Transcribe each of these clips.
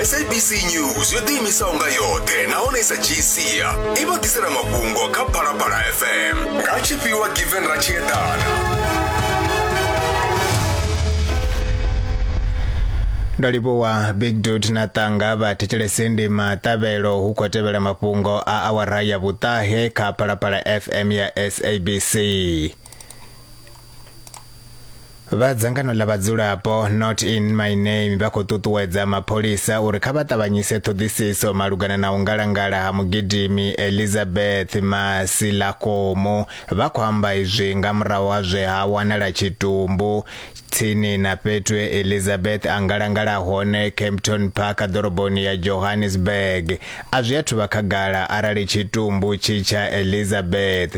sabc news yo ḓiimisaho nga yoṱhe nahone i sa dzhii sia i vha ḓisela mafhungo kha phalaphala fm nga tshifhiwa given ra tshi eḓana ndo livhuwa big dut na ṱanga vha thetshelese ndi maṱavhelo hu khou tevhela mafhungo a awara ya vhuṱahe kha phalaphala fm ya sabc vha dzangano ḽa vhadzulapo not in my name vha khou ṱuṱuwedza mapholisa uri kha vha ṱavhanyise ṱhoḓisiso malugana na u ngalangala ha mugidimi elizabeth masilakomo vha khou amba izwi nga murahu ha zwe ha wanala tshitumbu tsini na fhethu e elizabeth a ngalangala hone campton park ḓoroboni ya johannesburg a zwi athu vha khagala arali tshitumbu tshi tsha elizabeth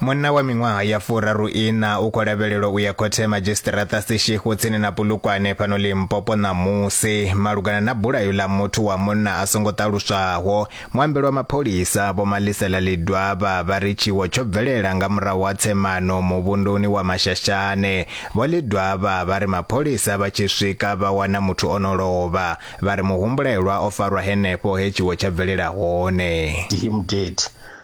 Munna wa miṅwaha ya furaruiṋa u khou lavhelelwa u ya khothe ya madzhisiṱiraṱa Seshego tsini na Polokwane fhano Limpopo ṋamusi malugana na bulayo ḽa muthu wa munna a songo ṱaluswaho. Muambeli wa mapholisa Vho Malisela Ledwaba vha ri tshiwo tsho bvelela nga murahu ha tsemano muvhunduni wa Mashashane. Vho Ledwaba vha ri mapholisa vha tshi swika vha wana muthu o no lovha, vha ri muhumbulelwa o farwa henefho he tshiwo tsha bvelela hone. Him dead.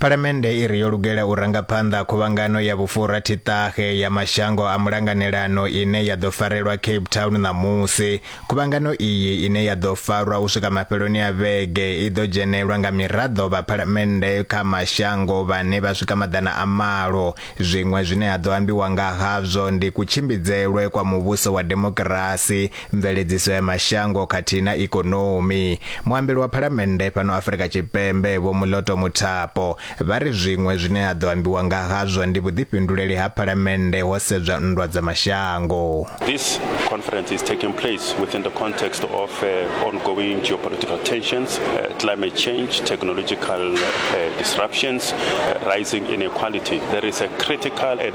Phalamennde i ri yo lugela u ranga phanḓa khuvhangano ya vhufurathi-ṱahe ya mashango a mulanganelano ine ya ḓo farelwa Cape Town ṋamusi. Khuvhangano iyi ine ya ḓo farwa u swika mafheloni a vhege i ḓo dzhenelwa nga miraḓo vha phalamennde kha mashango vhane vha swika maḓana a malo. Zwiṅwe zwine ha ḓo ambiwa nga hazwo ndi kutshimbidzelwe kwa muvhuso wa demokirasi, mveledziso ya mashango khathihi na ikonomi muambeli wa phalamennde fhano afurika tshipembe vho muloto muthapo vha ri zwiṅwe zwine ha ḓo ambiwa nga hazwo ndi vhuḓifhinduleli ha phalamennde ho sedzwa nndwa dza mashango This conference is taking place within the context of uh, ongoing geopolitical tensions, uh, climate change, technological uh, disruptions, uh, rising inequality. There is a critical and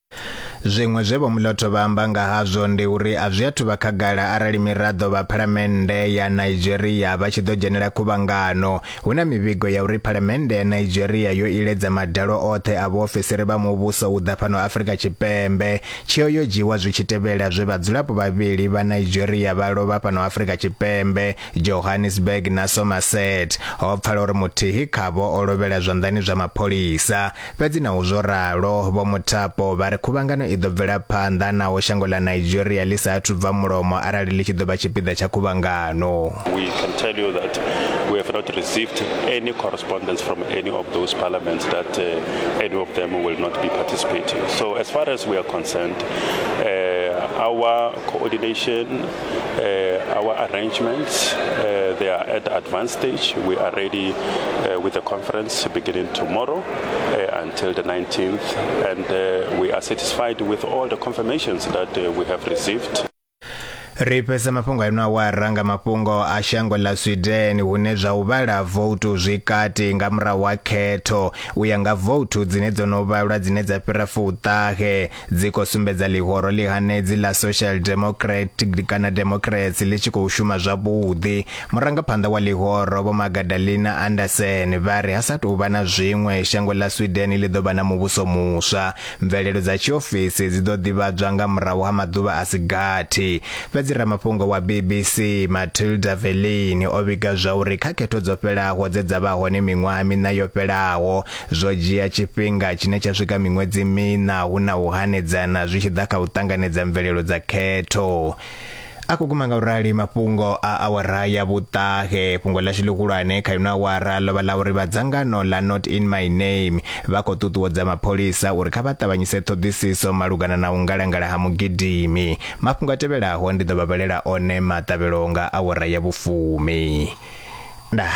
Zwiṅwe zwe Vho Mlotho vha amba nga hazwo ndi uri a zwi athu vha khagala arali miraḓo vha phalamennde ya Nigeria vha tshi ḓo dzhenela khuvhangano. Hu na mivhigo ya uri phalamennde ya Nigeria yo iledza madalo oṱhe a vhuofisiri vha muvhuso u ḓa fhano Afrika Tshipembe. Tsheo yo dzhiiwa zwi tshi tevhela zwe vhadzulapo vhavhili vha Nigeria vha lovha fhano Afrika Tshipembe, Johannesburg na Somerset. Ho pfala uri muthihi khavho o lovhela zwanḓani zwa mapholisa. Fhedzi naho zwo ralo, Vho Muthapo vha ri khuvhangano i ḓo bvela phanḓa naho shango ḽa Nigeria ḽi sa athu bva mulomo arali ḽi tshi ḓo vha tshipiḓa tsha khuvhangano. We can tell you that we have not received any correspondence from any of those parliaments that uh, any of them will not be participating. So as far as we are concerned, uh, our coordination Our arrangements, they are at advanced stage. We are ready with the conference beginning tomorrow until the 19th. We are satisfied with all the confirmations that we have received. ri fhedza mafhungo ano awara nga mafhungo a shango ḽa sweden hune zwa u vhala voutu zwi kati nga murahu ha khetho u ya nga voutu dzine dzo no vhalwa dzine dza fhira fuṱahe dzi khou sumbedza ḽihoro ḽi hanedzi ḽa social democrat kana democracy ḽi tshi khou shuma zwavhuḓi murangaphanḓa wa ḽihoro vho magadalina anderson vha ri ha sa tou vha na zwiṅwe shango ḽa sweden ḽi ḓo vha na muvhuso muswa mvelelo dza tshiofisi dzi ḓo ḓivhadzwa nga murahu ha maḓuvha a si gathi fhedzi ramafhungo wa bbc matilda velin o vhiga zwa uri kha khetho dzo fhelaho dze dza vha hone miṅwaha miṋa yo fhelaho Zwo dzhia tshifhinga tshine tsha swika miṅwedzi miṋa hu na u hanedzana zwi tshi ḓa kha u ṱanganedza mvelelo dza khetho. A khou guma nga u rali mafhungo a awara ya vhuṱahe. Fhungo ḽashu ḽihulwane kha ino awara ḽo vha ḽa uri vha dzangano ḽa Not In My Name vha khou ṱuṱuwedza mapholisa uri kha vha ṱavhanyise ṱhoḓisiso malugana na u ngalangala ha mugidimi. Mafhungo a tevhelaho ndi ḓo vha vhalela one maṱavhelo nga awara ya vhufumi. Ndaa.